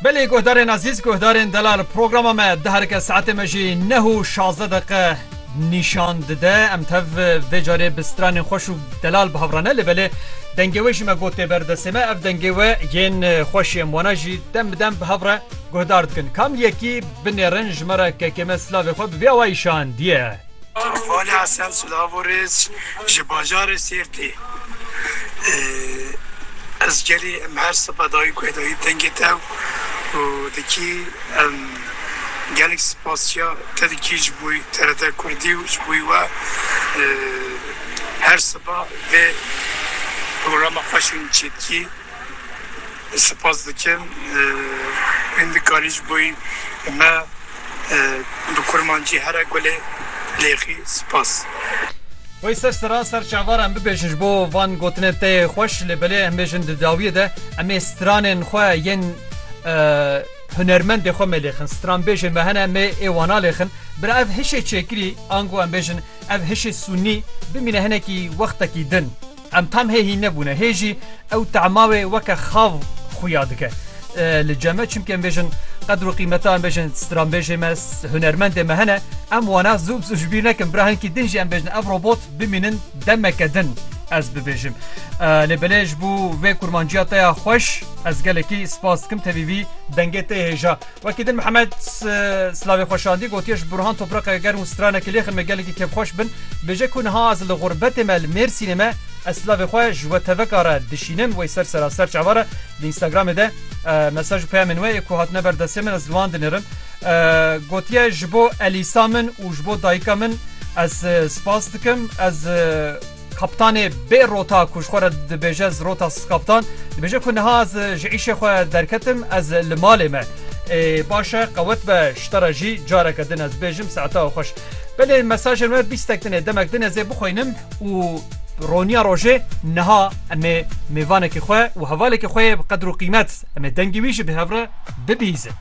Belê guhdarên ezîz, guhdarên delal programa me di herike saetê me jî neh û şazdeh deqe nîşan dide. Em tev vê carê bi stranên xweş û delal bi hev re ne lê belê dengê wê jî me got tê ber destê me. Ev dengê we yên xweşê em wana jî dem bi dem bi hev re guhdar dikin. Kam yekî binêrin ji me re kekê me silavê xwe bi vê awayî şandiye. Hevalî Hesen Silavo Rêz ji bajarê Sêrtê Ez gelê em her sibe dayî ku dayî dengê te û dikî em gelek spasiya te dikî ji bo TRT Kurdî û ji bo we her sibe vê programa xweş in çêdikî. Spas dikim hîndikarî ji bo me bi kurmancî here gulê lêxî. Spas. Wey ser sira ser çavara em bibêjin ji bo van gotinên te yê xweş lê belê em bêjin di dawiyê de em ê stranên xwe yên hunermendê xwe mê lêxin stranbêjê me hene mê ê wan a lêxin bira ev hişê çêkirî ango em bêjin ev hişê sûnî bimîne hinekî wextekî din. Em tam hê hîn nebûne, hê jî ew tema wê weke xav xuya dike li ceme çimkê em bêjin qedr û qîmeta em bêjin stranbêjê me hunermendê me hene em wana zû bi zû ji bîr nekin bira hinkî din jî em bêjin ev robot bimînin demeke din ez bibêjim lê belê ji bo vê kurmanciya te ya xweş ez gelekî spas dikim tevî vî dengê te hêja Wekî din Mihemed silavê xwe şandî gotiye ji Burhan topraqeke germ û stranekî lêxin me gelekî kêfxweş bin. Bêje ku niha ez li xurbetê me li Mêrsînê me ez silavê xwe ji we teveka re dişînim wey ser sera ser çavan re li Instagramê de mesaj û peyamên we ê ku hatine ber destê min ez li wan dinêrim. Gotiye ji bo Elîsa min û ji bo dayika min ez spas dikim ez Kaptanê bê rota ku ji xwe re dibêje ez rota skaptan dibêje ku niha ez ji îşê xwe derketim ez li malê me ê baş e qewet be ji te re jî careke din ez bêjim saeta û xweş. Belê mesajên we bîstek din ê demek din ez ê bixwînim û roniya rojê niha em ê mêvanekî xwe û hevalekî xwe yê bi qedr û qîmet em ê dengê wî jî bi hev re bibîzin.